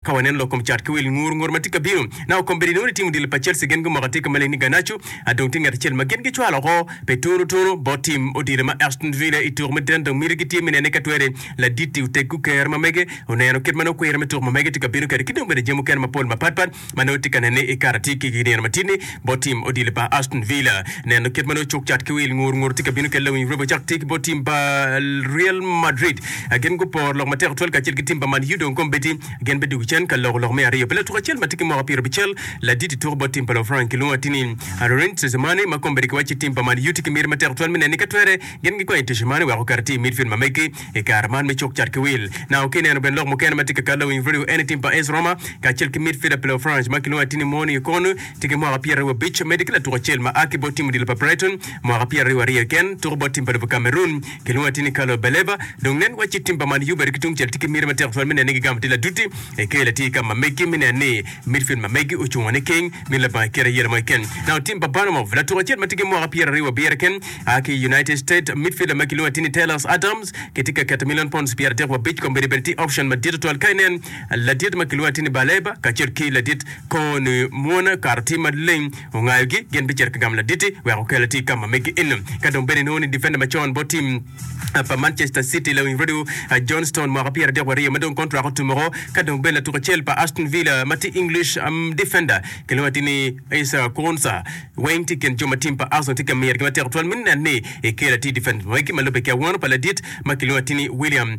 Ka waneno lok kom cat ki wil ngur ngur ma tye ka bino, naka kom bedo inongo ni tim odilo pa Chelsea gin gumoko atika maleng ni Garnacho, a dong tye ngat acel ma gin gicwalo oko pe tunu tunu bot tim odilo ma Aston Villa i tuku me deno dok miti gitye me nene ka twere ladit-ti oteggu kero ma mege oneno kit ma nongo kwira me tuku ma mege tye ka bino kede ki dong bene jami mukene mapol mapat pat ma nongo itye ka nene i karatatik ki i nino matidi-ni. bot tim odilo pa Aston Villa. Neno kit ma nongo cuk cat ki wil ngur ngur tye ka bino kelle winyo rwebe ocak tye ki bot tim pa Real Madrid. Gin guporo lok matek twal kacel ki tim pa Man U dong kom beti gin bidok i cen ka loko lok me aryo pi latuku acel ma tye ki mwaka pyerabicel ladit i tuku bot tim pa Lufrang kilwongo atini Aurelien Tchouameni ma kom bedi ki wacci tim pa Man U tye ki miti matek twal me neni ka twere gin gikwanyo Tchouameni wek oket atir i midfield ma megi I kare man me cuk cat ki wil, naka ka ineno bene lok mukene ma tye ka kalle wing redio Anything pa Ace Roma kacel ki midfielder Peleo Franch ma kilwongo atini Morning Ikon tye ki mwaka pyeraryo abic medde ki latuk acel ma a ki bot tim odilo pa Brighton mwaka pyeraryo aryo keken tuko bot tim pa lobo Cameroon kilwongo atini Carlo Baleba dong nen wacci tim pa Man U bene ki tungcel tye ki miti matek twal me nene gi gamo tila duti i kelo atir ka ma megi me neno ni midfield ma megi ocungo niking mito labongo ikete yelo mo keken nao tim pa Bournemouth latuk acel ma tye ki mwaka pyeraryo abiro keken A ki i United States, midfielder ma kilwongo ni Tiny Taylors Adams kitye ka keto milion pounds pyer adek wa abic komedi bene tye option madit tutwal ka inen ladit ma kilwongo ni Tiny Baleba kacel ki ladit Connie Muona kato tye maleng ongayo gi gin bicito ka gamo laditi wek okel atir ka ma megi eno ka dong bene inongo ni defender macon bot team pa Manchester City lawing Roddy John Stone mwaka pyer adek wa aryo ma dong contract otum oko ka dong bene latuk acel pa Aston Villa ma tye English defender kilwongo ni Tiny Issa Konsa Weng tye kin jo ma tim pa Arsenal tye ka miro ki matek twal me neno ni ekelo atir difenc pa magi ma lubbe ki awano pa ladit ma kilwongo atir ni William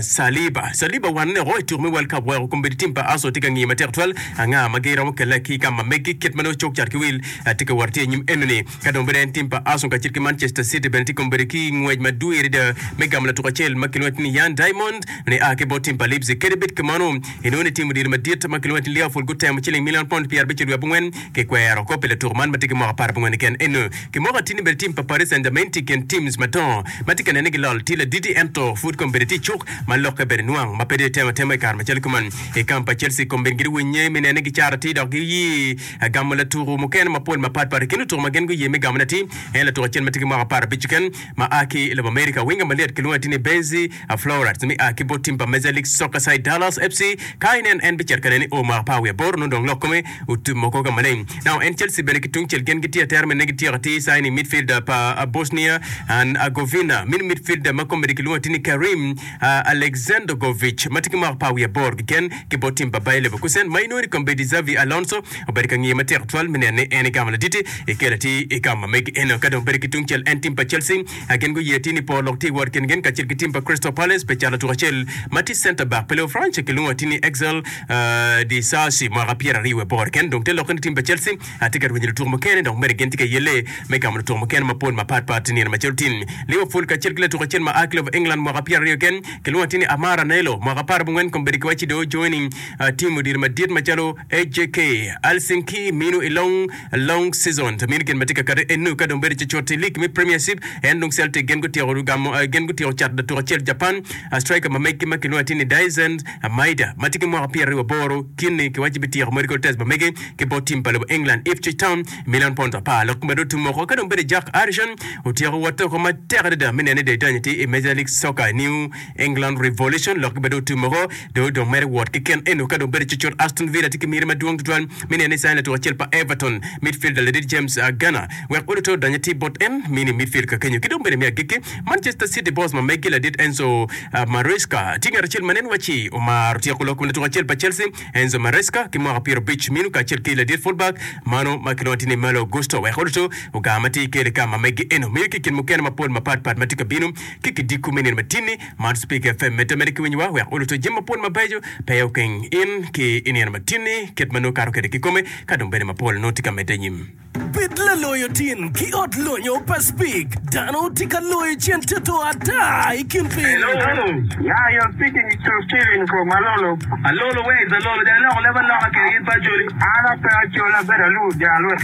Saliba. Saliba owano ni i tuku me World Cup weko kombeddi tim pa Arsenal tye ka ngiyo matek twal anga ma giromo kelle ki i ka ma megi kit ma nongo cuk cat ki wil tye ka wot atye i nyim enoni. Ka dong bedo en tim pa Arsenal kacel ki Manchester City bene tye kombeddi ki ngwec madwir adada me gamo latuk acel ma kilwongo atir ni Yann Diamond ma nia ki bot tim pa Leipzig. Kadi bed kamano, inongo ni tim odilo madit ma kilwongo atir ni Liverpool gutemo ciling milion pond pyerabic nyo dwe abongwen Kikwero kop pi latuko man ma tye ki mwaka apar abongone keken eno. Ki moko atir ni bene tim pa Paris Saint-Germain tye i kin teams madongo ma tye ka nene ki lol tir ladidi ento pud kombeddi tye icuk ma lokke bene nwang ma pe dong itemo atema i kare macalo kuman. I kamp pa Chelsea kombeddi gitye winye me nene ki caro atir dok giye gamo latuko mukene mapol mapat pat. I kin lutuko ma gin guye me gamone atir en latuko acel ma tye ki mwaka apar abic keken ma a ki i lobo America. Winga ma lyet kilwongo atir ni Benzi. A Florets me a ki bot tim pa Major League Soccer side Dallas FC, ka inen en bicito ka nen i o mwaka par wiye aboro nongo dong lok kome otum oko ka maleng. Now en Chelsea bene ki tungcel gin gitye atera me negi tyeko atir signing midfielder pa a Bosnia and Herzegovina mini midfielder ma komedi kilwongo atir ni Kerim a Alexandergovic ma tye ki mwaka par wiye aboro keken ki bot tim pa Bayer Leverkusen ma inongo ni kombedi Xabi Alonso obedo ka ngiye matek tutwal me neno ni en egamo laditi i kelo atir i ka ma megi eno. Ka dong bedi ki tungcel en tim pa Chelsea A Gin guye ti ni po lok ti wot kin gin kacel ki tim pa Crystal Palace pe cal atuk acel ma ti center back pa Leofrance kilwongo ati ni Axel Disasi mwaka pyera aryo wiye boro keken dong te lokke ni tim pa Chelsea ati ka rwenyo lutuku mukene dok mere gin ti ka yelle me gamo lutuku mukene mapol mapat pat ti nino macalo tim Liverpool kacel ki latuk acel ma a ki lobo England mwaka pyera aryo keken kilwongo ati ni Amad Anello mwaka apar bongwen kombedo ki waci dong ojoining tim odilo madit macalo HJK, Alsing ki minu i long long season ta minu gin ma tye ka kati enu ka dong bedo ce cut i lig me Premiership en dong Celtic gin gutyeko gamo gin gutyeko cato datuk acel Japan striker ma megi ma kilwongo atir ni Daizen Maeda ma tye ki mwaka pyeraryo waboro kit ni kiwaco bityeko medical test ma megi ki bot tim pa lobo England Ipswich Town milion pound apar lok ma dong otum woko ka dong bedo Jack Harrison otyeko wotte woko matek adada me neno ni Daizen tye i Major League Soccer i New England Revolution lok gibedo otum moko dong odong mere wot ki ken eno ka dong bedo cocot Aston Villa tye ki myero madwong tutwal me neno ni sain latuk acel pa Everton midfielder ladit James uh, Garner wek odo te odony atir bot en mini midfield ka kenyo ki dong bene me agikki Manchester City boss ma megi ladit Enzo uh, Maresca tye ngat acel ma nen wacci omaro tyeko lok kom latuk acel pa Chelsea Enzo Maresca ki mwaka pyero abic minu kacel ki ladit fullback mano ma kilwongo tye ni Malo Gusto wek odo te ogar matir ki Elika ma megi eno miyo ki i kin mukene mapol mapat pat ma tye ka bino ki kidiko me nino matini man Speaker FM medde ameda ki winyo wa wek oluto jami mapol mabeco pe okeng in ki inino matini kit ma nongo kato kwede kikome ka dong bene mapol nongo tye ka medde anyim. Bed laloyo tin ki ot lonyo pa Speak dano tye ka loyo cen toto ata i kin piny. Hello hello ya your speaking is true Steven from Alolo Alolo where is Alolo dong iloko leb aloka kede in pe acoli. An ape acoli abedo alur jalwek.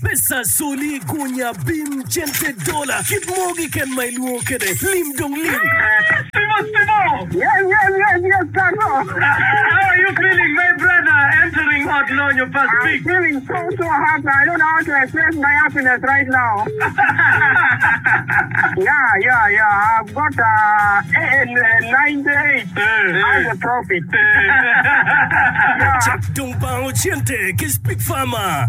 Pesa, soli, gunya, bim, cente, dola, kit moo kiken ma ilwongo kede, lim dong lim. Cak dong bango cente ki Spik Fama.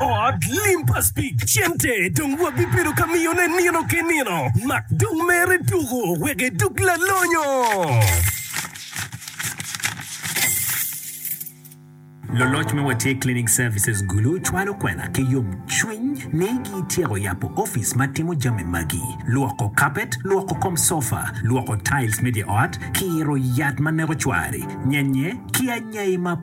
Ot lim pa Speke cente dong wabibedo ka miyone nino ki nino. Mak dong mere tuku wek idug lalonyo! Loloc me Watye Cleaning Services Gulu cwalo kwena ki yomcwiny ni gityeko yabo opic ma timo jami magi, lwoko kapet, lwoko kom sofa, lwoko tiles me dye ot, kiro yat ma neko cwari, nyenye, ki anyai ma.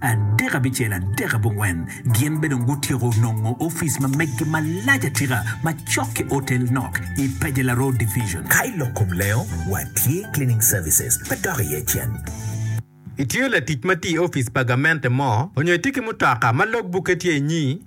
Adek abicel, adek abongwen, gin be dong gutyeko nongo office ma meggi malac atika ma cok ki otel nok i Pajela Road Division. Ka i lok kom lengo, wa tye cleaning services pe dok iye cen. Itye latic ma tye i office pa gamente mo, onyo itye ki mutoka ma log bukke tye inyi,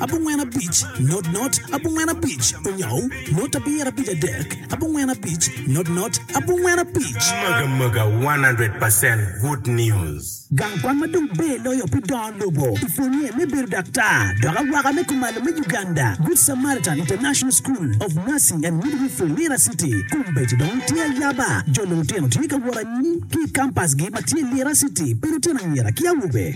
abongwen abic, not not, abongwen abic, onyou, not abiro abic adek, abongwen abic, not not, abongwen abic. Mega mega 100 percent good news. Gang kwan ma dong ber loyo pi dongo lobo i pwonye me bedo daktar dok awaka me kumalo me Uganda, Good Samaritan International School of Nursing and Midwifery, Lira City, kombeddi dong tye ayaba. Jo lutino tye ka wot anyim ki i kampasgi ma tye Lira City pi lutino anyira ki awobe.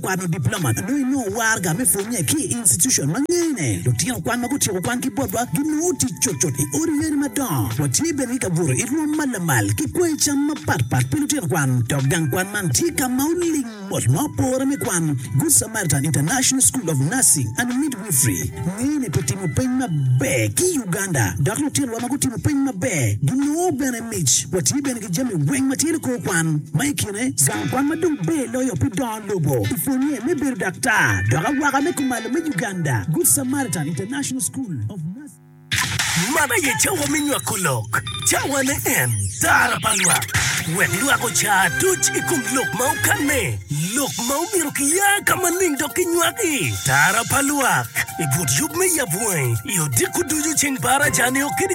Kwano diploma dong inongo waraga me pwonnye ki i institucon ma ngene. Lutino kwan ma gutyeko kwan ki botwa ginongo tic cutcut i odi yeni madongo. Watye bene ki ka buto i rwom ma lamal ki kweyo cam mapatpat pi lutino kwan. Dok gang kwan man tye ka ma oling mot ma opore me kwan. Good Samaritan International School of Nursing and Midwifery ngene pi timo peny maber ki i Uganda, dok lutinowa ma gutimo peny maber ginongo bene mic. Watye bene ki jami weng ma tye nikor kwan, ma i kine zang kwan ma dong ber loyo pi dongo lobo i pwonnye me bedo daktar dok awaka me kumalo me Uganda, Good Samaritan International School of Nursing. Man aye cawa me nywako lok, cawane en tara pa lwak, wek lwak oca aduc i kom lok ma okanne, lok ma omyero kiya ka maleng dok kinywak i tara pa lwak i but yub me yab wangi i odiko ducu ceng par aca nio kede.